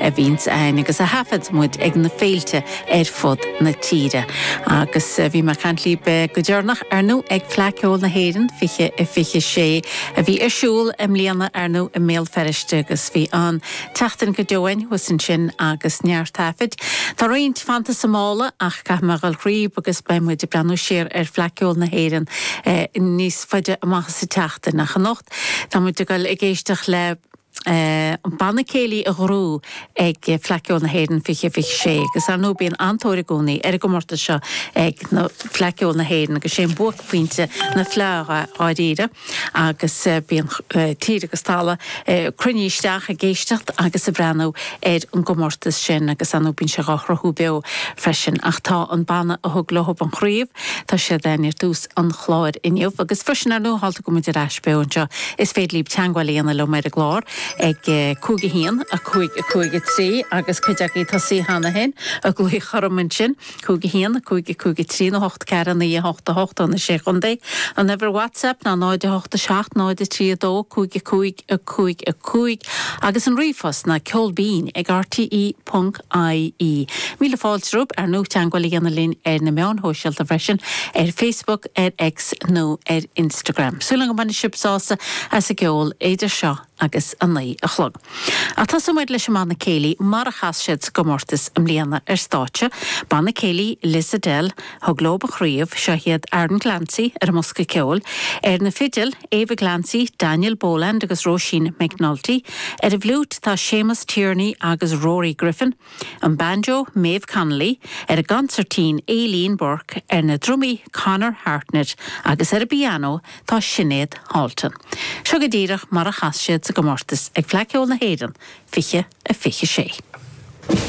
a bhíonns a'ainn agus a thaifead muid ag na féilte ar fud na tíre. Agus bhí mé a' caint líb go deireanach, ar ndú, ag Fleadh Ceoil na hÉireann, fiche, fiche a sé, a bhí ar siúl i mbliana, ar ndú, i mBéal Feirste agus bhí an-tseachtain go deo a'ainn thuas ansin agus neart taifid. Tá roinnt fanta sa mála ach caithfidh mé a dhul thríob agus beidh muid a' breathnú siar ar Fleadh Ceoil na hÉireann níos faide amach sa tseachtain. Ach anocht tá muid a' goil ag éisteach le. an Banna Céilí a ghnóthaigh ag Fleadh Ceoil na hÉireann 2026 agus ar ndóigh bíonn an-tóir i gcónaí ar an gcomórtas seo ag na Fleadh Ceoil na hÉireann agus sé an buaicphointe na Fleadha dháiríre agus bíonn tír agus talamh ag cruinniú isteach ag éisteacht agus ag breathnú ar an gcomórtas sin agus ar ndóigh bíonn sé dhá shruthú beo freisin ach tá an banna a thug leob an chraobh tá siad ar tús an chláir inniu. Agus freisin, ar ndóigh, tharla go bhfuil muid ar ais beo anseo, is féidir libh teagmháil a dhéanamh liom ar an gclár ag, cúig a haon, a cúig, a cúig a trí, agus cuid agaibh tosaithe cheana féin ag glaoch orm ansin, cúig a haon, a cúig, a cúig a trí, nó hocht ceathair a naoi a hocht a hocht ó na Sé Chontae. An uimhir WhatsApp ná 0 8 7 0 3 2 5 5 5 5 agus an ríomhphost ná ceolbinn ag rte. ie. Míle fáilte romhaibh ar ndóigh teagmháil a dhéanamh linn ar na meáin shóisialta freisin, ar Facebook, ar X nó ar Instagram. Súil agam go mbainfidh sibh sásamh as an gceol idir seo agus a naoi a chlog. Ach tosóidh muid leis an mBanna Céilí mar a chas siad sa gcomórtas i mbliana, ar stáitse, Banna Céilí Lissadell, thug leob an chraobh, seo iad Aaron Glancy ar an mbosca ceoil, ar na fidil, Ava Glancy, Daniel Boland agus Róisín McNulty, ar an bhfliúit tá Seamus Tierney agus Rory Griffin, an banjo, Maeve Connolly, ar an gconsairtín, Aileen Burke, ar na drumaí, Conor Hartnett, agus ar an bpianó tá Sinéad Halton. Seo go díreach mar a chas siad sa gcomórtas ag Fleadh Cheoil na hÉireann 2026.